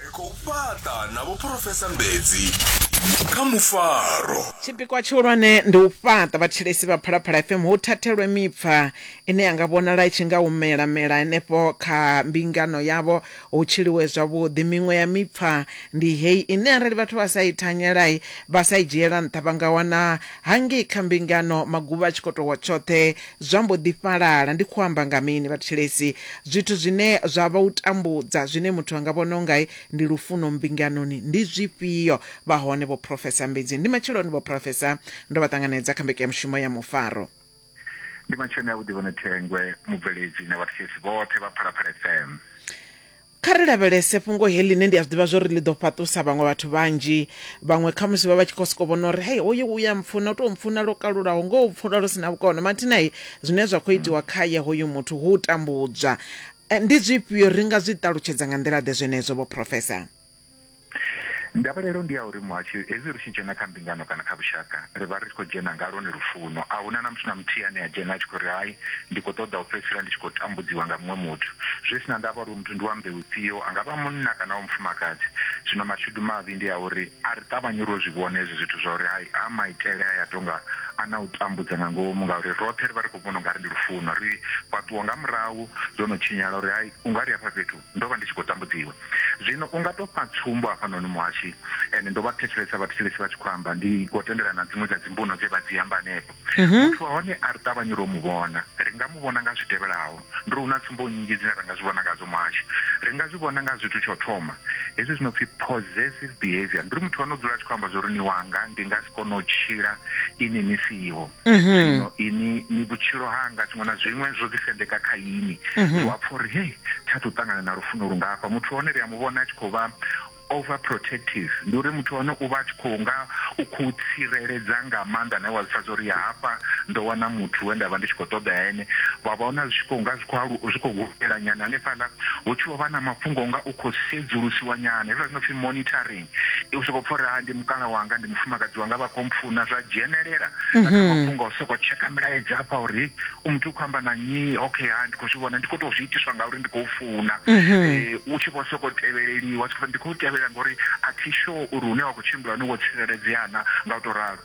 ri khou fhaṱa na vho phurofesa mbedzi kha mufaro Tshipikwa tshihulwane ndi u fhaṱa vhathetshelesi vha Phalaphala FM hu thathelwe mipfa ine ya nga vhonala i tshi nga humela mela henefho kha mbingano yavho hu tshiliwe zwavhuḓi. Miṅwe ya mipfa ndi heyi ine arali vhathu vha sa i thanyela, vha sa i dzhiela nṱha vha nga wana hangei kha mbingano maguvha a tshi khou tou wa tshoṱhe Zwa mbo ḓi fhalala. Ndi khou amba nga mini, vhathetshelesi? Zwithu zwine zwa vha u tambudza, zwine muthu a nga vhona u nga ndi lufuno mbinganoni, ndi zwifhio? Vha hone vhophurofesa mbidzi. Ndi matsheloni, vhophurofesa. Ndo vha ṱanganedza kha mbekanyamushumo ya Mufaro. Ndi matsheloni avhuḓi, Vho Nethengwe, mubveledzi, na vhathetshelesi vhoṱhe vha Phalaphala FM. Kha ri lavhelese fhungo heḽi ḽine ndi a zwi ḓivha zwo ri ḽi ḓo fhaṱusa vhaṅwe vhathu vhanzhi. Vhaṅwe khamusi vha vha tshi khou sokou vhona uri hei hoyu u ya mpfuna, u tou mpfuna lwo kalulaho, ngoho u pfula lu si na vhukono. Mathina-i, zwine zwa khou itiwa khae hoyu muthu hu u tambudzwa. Ndi zwifhio? Ri nga zwi ṱalutshedza nga nḓila-ḓe zwenezwo, Vho Professor? Ndavhelelo ndi ya uri muhasho, hezwi ri tshi dzhena kha mbingano kana kha vhushaka, ri vha ri tshi khou dzhena nga lwone lufuno. A hu na na muthu na muthihi ane a dzhena a tshi khou ri, Hai, ndi khou ṱoḓa u fhedzisela ndi tshi khou tambudziwa nga muṅwe muthu. Zwi si na ndavha uri uyo muthu ndi wa mbeu ifhio, a nga vha munna kana wa mufumakadzi. Zwino mashudu mavhi ndi a uri a ri ṱavhanyi uri ro zwi vhona hezwi zwithu zwa uri, Hai, a maitele aya a tou nga a na u tambudza nga ngomu, ngauri roṱhe ri vha ri khou vhona u nga ri ndi lufuno. Ri fhaṱuwa nga murahu dzo no tshinyala uri, Hai, u nga ri hafha fhethu Ndo vha ndi tshi khou tambudziwa. Zwino u nga tou fha tsumbo hafhanoni, Muhashi, and ndo vha thetshelesa vhathetshelesi vha tshi khou amba, ndi khou tendelana na dziṅwe dza dzimbuno dze vha dzi amba henefho. Muthu wa hone a ri ṱavhanyi u tou mu vhona. Ri nga mu vhona nga zwi tevhelaho. Ndi uri hu na tsumbo nnzhi dzine ra nga zwi vhona ngadzo, Muhashi. Ri nga zwi vhona nga zwithu tsha u thoma, hezwi zwi no pfi possessive behaviour. Ndi uri muthu wa hone u dzula a tshi khou amba zwa uri ni wanga, ndi nga si kone u tshila inwi ni siho. zwino ini ni vhutshilo hanga tshiṅwe na zwiṅwe zwo ḓi sendeka kha ini ndi wa pfha uri hei tsha tou ṱangana na lufuno lungafha muthu hone ri a mu vhona a tshi khou vha over protective ndi uri muthu hone u vha a tshi khou nga u khou tsireledza nga maanḓa nae wa zwi pfha uri ya hafha ndo wana muthu we nda vha ndi tshi khou ṱoḓa ene vha vhona zwi tshi khou nga zwi khou zwi khou hulela nyana hanefhaḽa hu tshi vho vha na mafhungo nga u khou sedzulusiwa nyana hezwiḽa zwi no pfhi monitoring ndi u sokou pfha uri ha ndi mukala wanga ndi mufumakadzi wanga vha khou mpfuna zwa dzhenelela na kha mafhungo a u sokou tsheka milaedza afha uri u muthu u khou amba na nnyi okay ha ndi khou zwi vhona ndi khou tou zwi itiswa ngauri ndi khou funa Eh, u tshi vho sokou tevheleliwa tshi khou pfa ndi khou tevhelela ngori a thi sure uri hune wa khou tshimbila hone wo tsireledzea na nga u tou ralo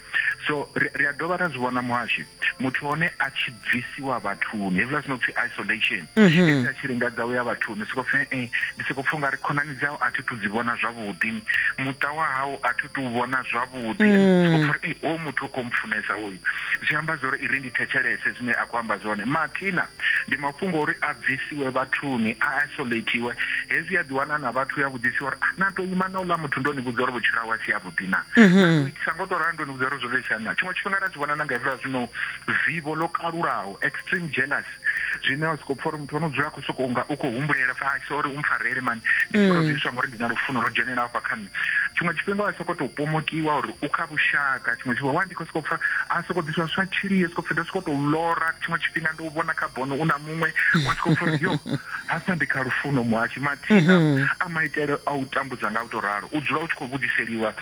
so ri a dovha ra zwi vhona muhashi muthu hone a tshi bvisiwa vhathuni hezwiḽa zwino pfhi isolation mhm. a tshi lingadza u ya vhathuni soko pfhi e ndi soko pfha ungari khonani dzau a thi thu dzi vhona zwavhuḓi muṱa wa hau a thi tu vhona zwavhuḓi mm. soko pfha uri o muthu o khou mpfunesa uyu zwi amba zwa uri i ri ndi thetshelese zwine a khou amba zwone mathina Ndi mafhungo a uri a bvisiwe vhathuni, a isolatiwe. Hezwi ya ḓiwana a na vhathu, u ya vhudzisiwa uri, Ah, na tou ima na uḽa muthu ndo ni vhudza uri vhutshilo hawe a si havhuḓi naa? Na tou itisa nga u tou ralo ndo ni vhudza uri zwo tou itisa hani naa? Tshiṅwe tshifhinga ra zwi vhona na nga hezwiḽa zwi no vivho ḽo kalulaho, extreme jealousy, zwine wa sokou pfa uri muthu o no dzula a khou sokou nga u khou humbulela u pfa, Hai, sorry u mpfarele mani, ndi tshi tou zwi itiswa ngauri ndi na lufuno lwo dzhenelaho hafha kha nṋe. tshiṅwe tshifhinga wa soko tou pomokiwa uri u kha vhushaka tshiṅwe tshifhinga wa ndi khou sokou pfha a sokou ḓiswa zwiswa tshili yo sokou pfhi ndo sokou tou lora tshiṅwe tshifhinga ndi u vhona kha bono u na muṅwe wa sokou pfha uri yo hafha ndi kha lufuno muhashi mathina mhm. a maitele a u tambudza nga u tou ralo u dzula u tshi khou vhudziseliwa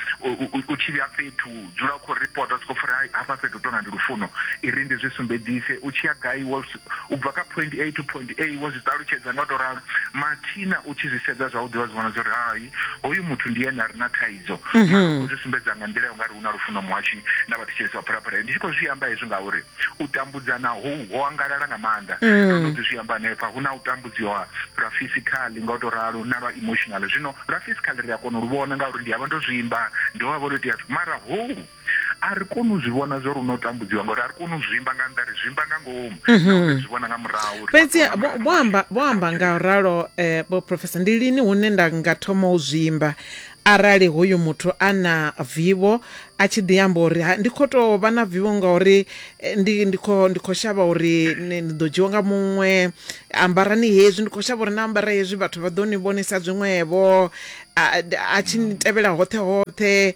u tshi vhuya fhethu u dzula u khou ripota sokou pfha uri hafha fhethu tou nga ndi lufuno i ri ndi zwi sumbedzise u tshi ya gai wo u bva kha point a to point a wo zwi ṱalutshedza nga u tou ralo mathina u tshi zwi sedza zwavhuḓi wa zwi vhona zwa uri hai hoyu muthu ndi ene a re na thaidzo u zwi sumbedza nga nḓila ya u nga ri hu na lufuno muhashu na vhathetshelesi vha phalaphala ndi tshi khou zwi amba hezwi ngauri u tambudzana hou ho angalala nga maanḓa ndo no ḓi zwi amba hanefha hu na u tambudziwa lwa physically nga u tou ralo na lwa emotional zwino lwa physically ri a kona u lu vhona ngauri ndi a vha ndo zwimba ndi ho vha vho tou itea mara hou A ri koni u zwi vhona zwo ri no tambudziwa ngori a ri koni u zwimba nga nnḓa ri zwimba nga ngomu nahone ri zwi vhona nga murahu uri Fhedzi vhathu vho vho- vho amba vho amba nga u ralo eh, vho professor ndi lini hune nda nga thoma u zwimba arali hoyu muthu a na vivho a tshi ḓi amba uri "Ha, ndi khou tou vha na vivho ngauri eh, ndi ndi khou ndi khou shavha uri ni ni ḓo dzhiwa nga muṅwe ambarani hezwi ndi khou shavha uri na ambara hezwi vhathu vha ḓo ni vhonisa zwiṅwevho a, a tshi ni tevhela hoṱhe hoṱhe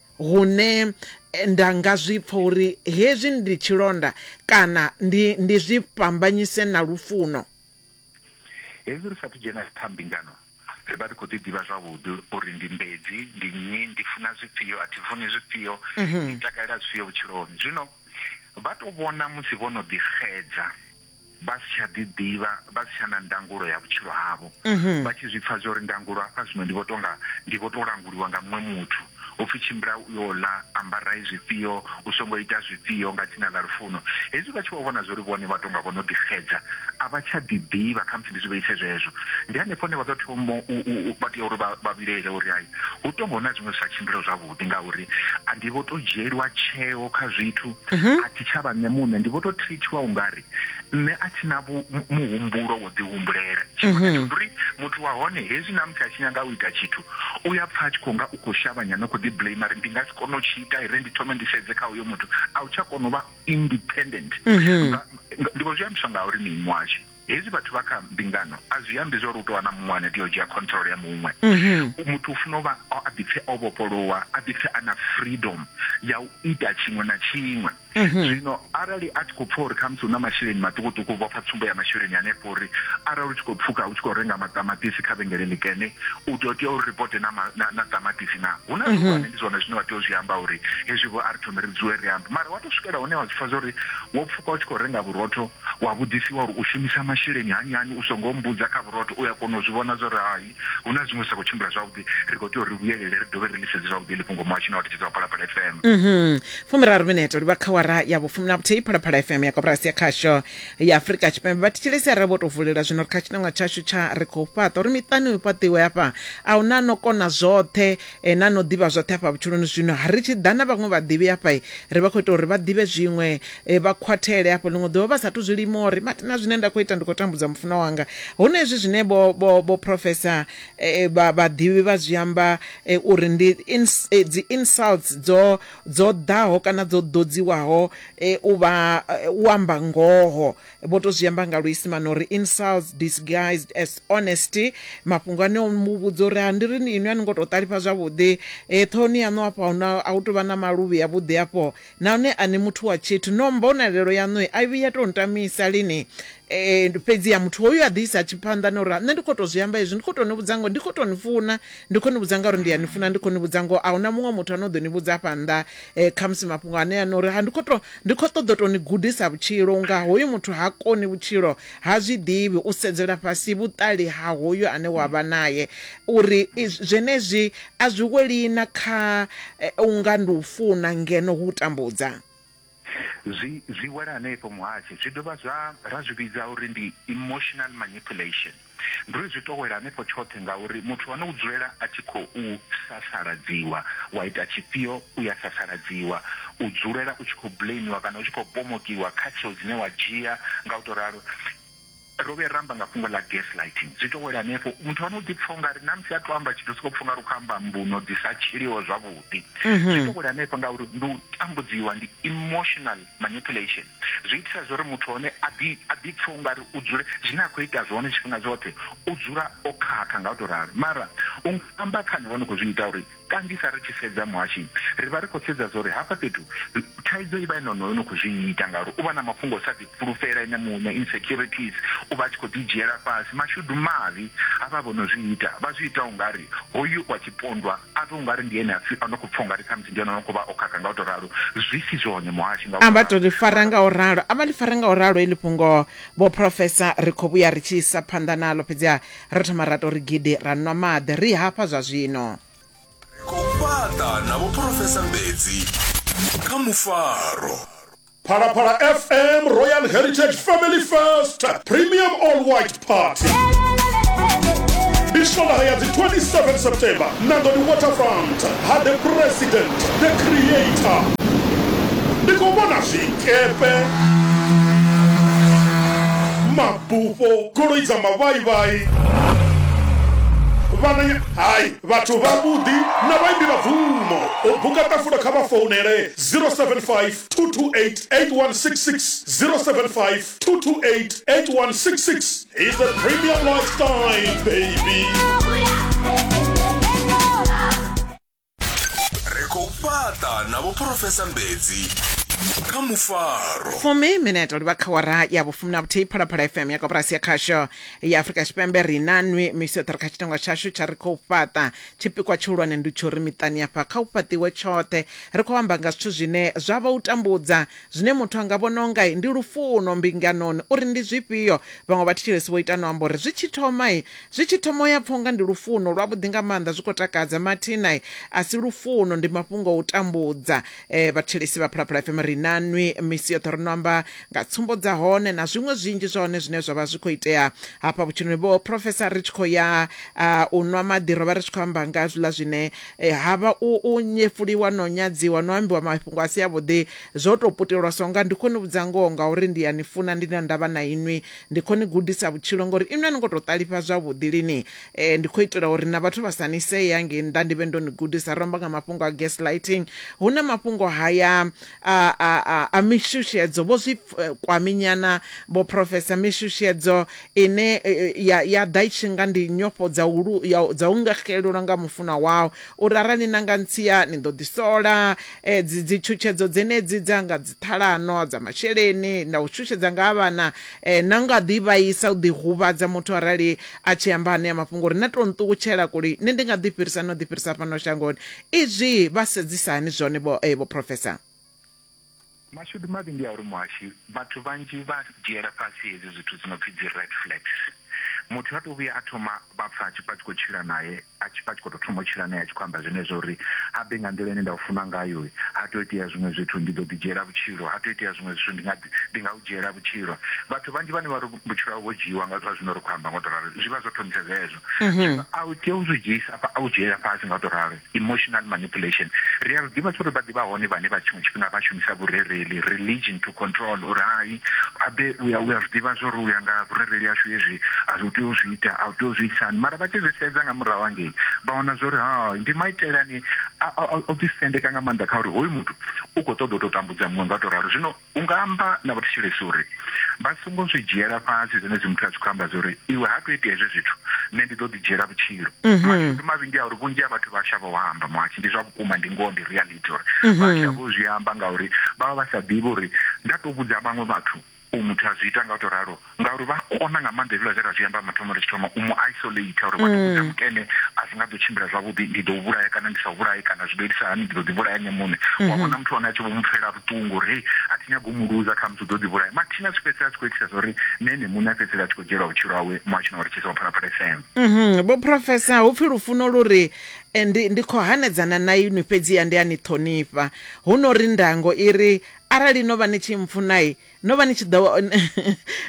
Hune nda nga zwi pfa uri hezwi ndi tshilonda kana ndi, ndi zwi fhambanyise na lufuno. Hezwi ri sa athu dzhena kha mbingano, ri vha ri khou ḓi ḓivha zwavhuḓi uri ndi mbedzi, ndi nnyi, ndi funa zwifhio, a thi funi zwifhio, ndi takalela zwifhio vhutshiloni. Zwino vha tou vhona musi vho no ḓi xedza. vha si tsha ḓiḓivha, vha si tsha na ndangulo ya vhutshilo havho, vha tshi zwi pfa zwa uri ndangulo hafha zwino ndi vho tou nga ndi vho tou languliwa nga muṅwe muthu, u pfi tshimbila u yo ḽa, ambarai zwifhio, u songo ita zwifhio nga dzina ḽa lufuno. Hezwi vha tshi vho vhona zwa uri vhone vha tou nga vho no ḓixedza, a vha tsha ḓiḓivha, khamusi ndi zwi vheise zwezwo, ndi hanefho hune vha ḓo thoma u, u, u, vha tea uri vha, vha vhilaele uri hai, hu tou nga hu na zwiṅwe zwi sa tshimbilaho zwavhuḓi. ndi ngauri a ndi vho to dzhieliwa tsheo kha zwithu mhm. a thi tsha vha nṋe muṋe ndi vho to treatiwa ungari nṋe a thi na muhumbulo wo ḓihumbulela tshifhinga mhm. tsho uri muthu wa hone hezwi na musi a tshi nyaga u ita tshithu u ya pfa a tshi khou nga u khou shavha nyana khou ḓi blame ri ndi nga si kone u tshi ita ire ndi thome ndi sedze kha uyo muthu a u tsha kona u vha independent mhm. ndi vho zwi ambiswa nga uri mini washu Hezwi vhathu vha kha mbingano, a zwi ambi zwa uri hu tou vha na muṅwe ane a tea u dzhia control ya muṅwe. Muthu u funa u vha a ḓipfe o vhofholowa, a ḓipfe a na freedom ya u ita tshiṅwe na tshiṅwe. Zwino arali a tshi khou pfa uri khamusi hu na masheleni maṱukuṱuku, u vhofha tsumbo ya masheleni hanefho uri arali u tshi khou pfuka u tshi khou renga maṱamaṱisi kha vhengele ḽikene, u ḓo tea u reporte na na na ṱamaṱisi naa. Hu na zwihulwane, ndi zwone zwine wa tea u zwi amba uri hezwi vho a ri thome ri dzule ri ambe. Mara wa tou swikela hune wa zwi pfa zwa uri wo pfuka u tshi khou renga vhurotho Wa vhudzisiwa uri u shumisa masheleni hani hani, u songo mmbudza kha vhurotho, u a kona u zwi vhona zwa uri hai, hu na zwiṅwe zwi sa khou tshimbila zwavhuḓi. Ri khou tea uri ri vhuyelele ri dovhe ri ḽi sedze zwavhuḓi heḽi fhungo muhashoni wa thetshedzo wa Phalaphala FM. Fumiraru minete u livha kha awara ya vhufumi na vhuthihi Phalaphala FM ya koporasi ya khasho ya Afurika Tshipembe. Vhathetshelesi arali vho tou vulelwa zwino ri kha tshiṋangwa tshashu tsha Ri Khou Fhaṱa uri miṱani hu fhaṱiwe hafha, a hu na no kona zwoṱhe. Ene a no ḓivha zwoṱhe afha vhutshiloni. Zwino ri tshi ḓa na vhaṅwe vhaḓivhi afha, ri vha khou ita uri vha ḓivhe zwiṅwe, vha khwathele afho ḽiṅwe ḓuvha vha sa athu zwi lima uri, Mathina, zwine nda khou ita ndi khou tambudza mufunwa wanga. Huno hezwi zwine vho, vho, vho profesa, vha, vhaḓivhi vha zwi amba uri ndi ins, dzi insults dzo, dzo ḓaho kana dzo ḓodziwaho u vha, u amba ngoho. Vho tou zwi amba nga luisimane uri insults disguised as honesty. Mafhungo ane o mu vhudza uri, Ha ndi ri ni inwi a ni ngo tou ṱalifha zwavhuḓi. Ṱhohoni yaṋu afho a hu na, a hu tou vha na maluvhi avhuḓi afho. Nahone a ni muthu wa tshithu. No, mbonalelo yaṋu a i vhuyi ya tou ntamisa lini. Fhedziha muthu hoyu a ḓi isa tshiphanḓa na uri, Nṋe ndi khou tou zwi amba hezwi, ndi khou tou ni vhudza ngoho, ndi khou tou ni funa. Ndi khou ni vhudza ngauri ndi a ni funa, ndi khou ni vhudza ngoho. A hu na muṅwe muthu a no ḓo ni vhudza afha nnḓa. um khamusi mafhungo ane a no uri ndi khou to ndi khou ṱoḓa to ni gudisa vhutshilo unga hoyu muthu ha koni vhutshilo ha zwi ḓivhi u sedzela fhasi vhuṱali ha hoyu ane wa vha naye uri zwenezwi a zwi weli na kha eh, unga ndi u funa ngeno hu tambudza zwi zwi wela hanefho muhashi zwi dovha zwa ra zwi vhidza uri ndi emotional manipulation Ndi uri zwi tou wela hanefho tshoṱhe ngauri muthu ane u dzulela a tshi khou sasaladziwa, wa ita tshifhio u ya sasaladziwa, u dzulela u tshi khou blamiwa kana u tshi khou pomokiwa kha tsheo dzine wa dzhia nga u tou ralo. Ro vhuya ra amba nga fhungo ḽa gaslighting, zwi tou wela hanefho. Muthu ane u ḓi pfa u nga ri na musi a tou amba tshithu u sokou pfa u nga ri u khou amba mbuno dzi sa tshiliho zwavhuḓi. Zwi tou wela hanefho ngauri ndi u tambudziwa, ndi emotional manipulation. zwi itisa zwo ri muthu hone a ḓi a ḓi pfha ungari u dzule zwine a khou ita zwone tshifhinga tshoṱhe u dzula o khakha nga u to ralo mara u amba khani vhone khou zwi ita uri kanzhisa ri tshi sedza muhashi ri vha ri khou sedza zwa uri hafha fhethu thaidzo i vha i nonoyo no khou zwi ita ngauri u vha na mafhungo sa ḓi fhulufhela ene muṋe insecurities u vha a tshi khou ḓi dzhiela fhasi mashudu mavhi a vha vho no zwi ita vha zwi ita ungari hoyu wa tshipondwa a pfe ungari ndi ene a pfi a no khou pfa ungari khamusi ndi ene no khou vha o khakha nga u tou ralo zwi si zwone muhashi nga a vha tou ḽi fara nga u ralo a vha ḽi fara nga u ralo heḽi fhungo vho profesa ri khou vhuya ri tshi isa phanḓa naḽo fhedziha ro thoma ra tou ri gidi ra nwa maḓi ri hafha zwa zwino ri khou fhaṱa na vho profesa mbedzi kha mufaro Phalaphala FM Royal Heritage Family First Premium All White Party ndi shola ya dzi 27 september nangoni waterfront ha the president the creator ndi khou vhona zwikepe mabufho goloi dza mavhaivhai vhananya hai vhathu vhavhuḓi na vhaimbi vha bvumo u buka ṱafula kha vha founele 075 228-8166-075 228-8166 is the premium lifestyle baby ri khou fhaṱa na vhophurofesa mbedzi kha mufaro fumi minete livha kha wara ya vhufumi na vhuthihi phalaphala fm ya koporasi ya khasho ya afurika tshipembe ri na nwi misi yoṱhe ri kha tshitengo tshashu tsha ri khou fhaṱa Tshipikwa tshihulwane ndi tsha uri miṱani hafha kha hu fhaṱiwe tshoṱhe. Ri khou amba nga zwithu zwine zwa vha u tambudza, zwine muthu a nga vhona u nga ndi lufuno mbinganoni, uri ndi zwifhio. Vhaṅwe vhathetshelesi vho ita na u amba uri zwi tshi thoma, zwi tshi thoma u ya pfa u nga ndi lufuno lwavhuḓi nga maanḓa, zwi khou takadza. Mathina, a si lufuno, ndi mafhungo a u tambudza. e vhathelesi vha phalaphala fm ri na nwi misi yoṱhe ri no amba nga tsumbo dza hone na zwiṅwe zwinzhi zwa hone zwine zwa vha zwi khou itea hafha vhutshiloni vho profesa ri tshi khou ya u nwa maḓi ro vha ri tshi khou amba nga zwiḽa zwine e, ha vha u nyefuliwa no nyadziwa no ambiwa mafhungo a si avhuḓi zwo tou putelwa so nga ndi khou ni vhudza ngoho ngauri ndi ya ni funa ndi na ndavha na inwi ndi khou ni gudisa vhutshilo ngori inwi a ni ngo tou ṱalifha zwavhuḓi lini Eh, ndi khou itela uri na vhathu vha sa ni see hangei nnḓa ndi vhe ndo ni gudisa romba nga mafhungo a gaslighting hu na mafhungo haya a, a, a, a mishushedzo vho zwi eh, kwaminyana vho profesa mishushedzo ine eh, eh, ya, ya ḓa i tshi nga ndi nyofho dza u lu- ya u- dza u nga xelelwa nga mufunwa wau uri arali ni na nga ntsia ni ḓo ḓisola eh, dzi dzi tshutshedzo dzenedzi dza nga dzi ṱhalano dza masheleni na u shushedza nga ha vhana eh, na nga ḓi vhaisa u ḓi huvhadza muthu arali A tshi amba anea mafhungo uri na tou nṱukutshela kuli nṋe ndi nga ḓi fhirisa no ḓi fhirisa fhano shangoni, izwi vha sedzisa hani zwone vho vho Professor? Mashudu mavhi ndi a uri muhashi vhathu vhanzhi vha dzhiela fhasi hedzi zwithu dzi no pfi dzi red flags. Muthu ha to vhuya a thoma vha pfa a tshi pfa a tshi khou tshila nae. a tshi pfa a tshi khou tou thoma u tshila nae a tshi khou amba zwenezwo uri ha bve nga nḓila ine nda u funa ngayo, ha tou itea zwiṅwe zwithu ndi ḓo ḓidzhiela vhutshilo, ha tou itea zwiṅwe zwithu ndi nga ndi nga u dzhiela vhutshilo. Vhathu vhanzhi vhane vha ri vhutshilo havho vho dzhiiwa nga zwa zwine ri khou amba nga u tou ralo zwi vha zwo thomisa zwezwo. Zwino a u tea u zwi dzhiisa afha, a u dzhiela fhasi nga u tou ralo, emotional manipulation. Ri a zwi ḓivha zwa uri vha ḓi vha hone vhane vha tshiṅwe tshifhinga vha shumisa vhurereli, religion, to control uri hai. abe uya uya zwiḓivha zwo ri uya nga vhurereli yashu hezwi a zwi tea u zwi ita a tea u zwi itisani mara vha tshi zwi sedza nga murahu hangei vha wana zwa uri ha ndi maitele ane o ḓisendeka nga maanḓa kha uri hoyu muthu u khou ṱoḓa u tou tambudza muṅwe nga to ralo zwino u nga amba na vhathetshelesi uri vha songo zwi dzhiela fhasi zwine zwi muthu a tshi khou amba zwa uri iwe ha to itea hezwi zwithu nṋe ndi ḓo ḓi dzhiela vhutshilo mhm. mashudu mavhi ndi a uri vhunzhi ha vhathu vha shavha u amba mwathi ndi zwa vhukuma ndi ngoho ndi reality monitor mhm. vha tsha vho zwi amba ngauri vha vha vha sa ḓivhi uri nda to vhudza vhaṅwe vhathu u muthu a zwi ita nga u to ralo ngauri vha kona nga maanḓa hezwiḽa zwe ra zwi amba mathomo ri tshi thoma u mu isolate uri vha ḓo mm. mukene a zwi nga ḓo tshimbila zwavhuḓi ndi ḓo vhulaya kana ndi sa vhulayi kana zwi ḓo itisa hani ndi ḓo ḓivhulaya nṋe muṋe wa mm-hmm. vhona muthu wane a tshi vho mu pfela vhuṱungu uri hei a thi nyago mu luza kha musi u ḓo ḓivhulaya mathina zwi fhedzisela tshi khou itisa zwa uri nṋe ene muṋe a fhedzisela a tshi khou dzhielwa vhutshilo hawe muhashina wa ri tshisa wa phalaphala fm mm-hmm. vho professor hu pfi lufuno lu ri Ndi, ndi khou hanedzana na inwi, fhedziha ndi a ni ṱhonifha. Huno ri ndango i ri, Arali no vha ni tshi mpfuna-i, no vha ni tshi ḓo,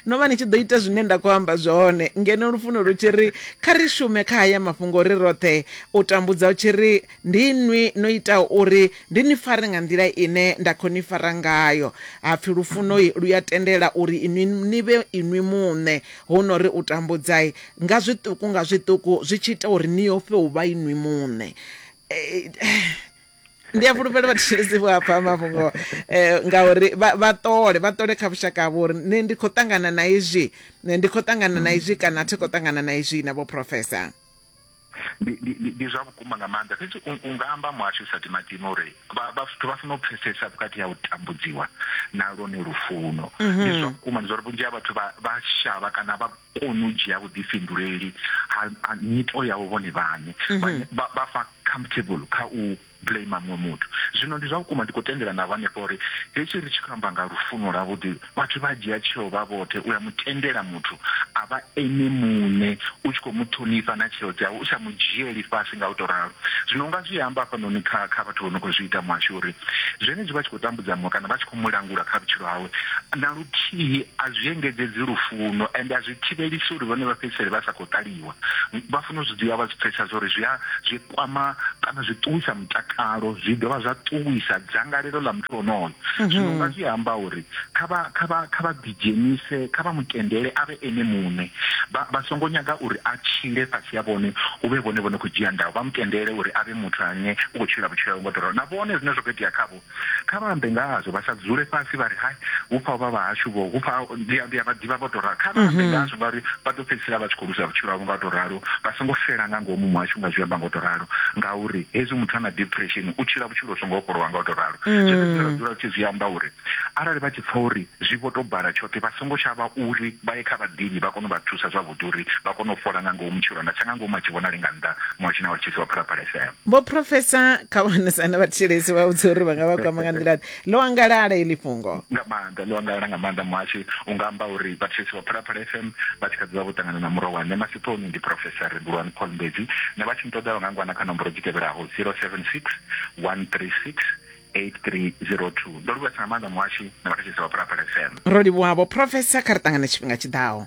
no vha ni tshi ḓo ita zwine nda khou amba zwone. Ngeno lufuno lu tshi ri, Kha ri shume kha haya mafhungo ri roṱhe, u tambudza hu tshi ri, Ndi inwi no itaho uri ndi ni fare nga nḓila ine nda khou ni fara ngayo. Ha pfi lufuno-i lu a tendela uri inwi ni vhe inwi muṋe. Huno ri u tambudza-i, Nga zwiṱuku nga zwiṱuku zwi tshi ita uri ni ofhe u vha inwi muṋe. Eh, ndi a fhulufhela vhathetshelesi vho a pfha mafhungo um ngauri vha ṱole vha ṱole kha vhushaka havho uri nṋe ndi khou ṱangana na izwi ndi khou ṱangana na izwi kana a thi khou ṱangana na izwi na vho professor ndi ndi ndi- ndi zwa vhukuma nga maanḓa fhedzi u u nga amba muhasho sa timatima uri vha- vha- vhathu vha fanela u pfesesa vhukati ha u tambudziwa na lwone lufuno ndi zwa vhukuma ndi zwa uri vhunzhi ha vhathu vha vha shavha kana vha koni u dzhia vhuḓifhinduleli ha ha nyito yavho vhone vhane Vha- vha vha fa comfortable kha u blamer muṅwe muthu. Zwino ndi zwa vhukuma ndi khou tendelana navho hanefha uri hetshi ri tshi khou amba nga lufuno lwavhuḓi, vhathu vha dzhia tsheo vha vhoṱhe u ya mu tendela muthu a vha ene muṋe, u tshi khou mu ṱhonifha na tsheo dzawe u sa mu dzhieli fhasi nga u tou ralo. Zwino u nga zwi amba hafhanoni kha kha vhathu vho no khou zwi ita muhasho uri zwenezwi vha tshi khou tambudza muṅwe kana vha tshi khou mu langula kha vhutshilo hawe, na luthihi a zwi engedzedzi lufuno ende a zwi thivhelisi uri vhone vha fhedzisele vha sa khou ṱaliwa. Vha fanela u zwi dzhia vha zwi pfesesa zwa uri zwi a zwi. kwama kana zwi ṱuwisa mutakalo zwi dovha zwa ṱuwisa dzangalelo ḽa muthu onoyo mhm. zwino nga zwi amba uri kha vha kha vha kha vha ḓidzhenise kha vha mutendele a vhe ene muṋe vha songo nyaga uri a tshile fhasi ya vhone hu vhe vhone vhone khou dzhia ndayo vha mutendele uri a vhe muthu ane u khou tshila vhutshilo ngo ḓoroho na vhone zwine zwa khou itea khavho Kha vha ambe nga hazwo, vha sa dzule fhasi vha ri, Hai, hu pfa vha vhahashu vho, hu pfa ndi a, ndi a vha ḓivha vho tou ralo. Kha vha ambe nga hazwo ngauri vha ḓo fhedzisela vha tshi khou luza vhutshilo havho nga u tou ralo. Vha songo xela nga ngomu muhashu nga zwi amba nga u tou ralo ngauri hezwi muthu a na depression u tshila vhutshilo vhu songo vhofholowa nga u tou ralo. Zwenezwi zwine ra dzula ri tshi zwi amba uri arali vha tshi pfa uri zwi vho tou bala tshoṱhe vha songo shavha uri vha ye kha vhaḓivhi vha kone u vha thusa zwavhuḓi uri vha kone u fhola nga ngomu, tshilonda tsha nga ngomu a tshi vhonali nga nnḓa muhasho na vha ri tshisi wa Phalaphala FM. vho professor kha vhanesana vhathetshelesi vha vhudza uri vha nga vha kwama nga nḓila ḽo angalala ili fhungo nga maanḓa ḽo angalala nga maanḓa muhashi u nga amba uri vhathetshelesi vha phalaphala fm vha tshi kha ḓivha vho ṱangana na muro wa nṋe masiphoni ndi professor rebulwani paul mbedzi na vha tshi nṱoḓa vha nga ngwana kha nomboro dzi tevhelaho 076 136 8302 ndo livhuwesa nga maanḓa muhashi na vhathetshelesi vha phalaphala fm ro livhuwavho professor kha ri ṱangana tshifhinga tshiḓaho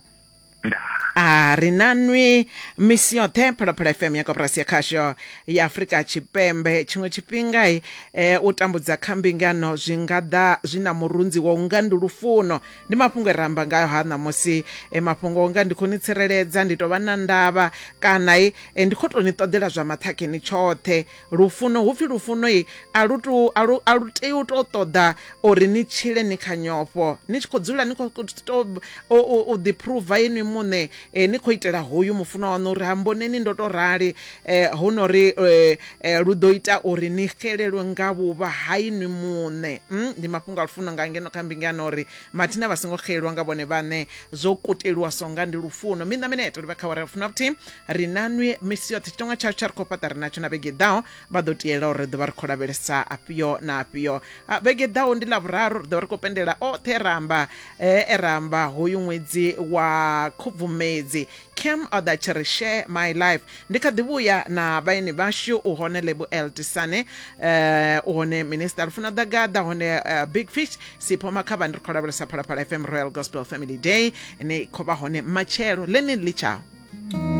a ri na nwi misi yoṱhe phalaphala fm ya koporasi ya khasho ya afurika tshipembe tshiṅwe tshifhinga e u tambudza kha mbingano zwi nga ḓa zwi na murunzi wa unga ndi lufuno ndi mafhungo e ramba ngayo ha ṋamusi e mafhungo unga ndi khou ni tsireledza ndi tou vha na ndavha kana e ndi khou tou ni ṱoḓela zwa maṱhakheni tshoṱhe Lufuno, hu pfi lufuno i, a lu tou a lu a lu tei u tou ṱoḓa uri ni tshile ni kha nyofho ni tshi khou dzula ni khou to u ḓi phuruva inwi muṋe eh, ni khou itela hoyu mufunwa waṋu uri ha mboneni ndo tou rali eh, hu no ri eh, eh, lu ḓo ita uri ni xelelwe nga vhuvha ha inwi muṋe mm? ndi mafhungo a lufuno nga ngeno kha mbinga yana uri mathina vha songo xelelwa nga vhone vhaṋe zwo kuteliwa songa ndi lufuno miṋa mineto livha kha wara lufuno vhuthihi ri na nwi misi yoṱhe tshitonga tshayo tsha ri khou fhaṱa ri natsho na vhege ḓaho vha ḓo tiela uri ri ḓovha ri khou lavhelesa afhio na afhio vhege ḓaho ndi ḽa vhuraru ri ḓovha ri khou pendela oṱhe e ramba e ramba hoyu ṅwedzi wa khubvumedzi cam oda tshi ri share my life ndi kha ḓi vhuya na vhaeni vhashu u hone lebu eltisane um u hone minista lufuna ḓagaḓa hone big fish sipho makhavha ndi ri khou lavhelesa phalaphala fm royal gospel family day ni khou vha hone matshelo ḽeneli litshao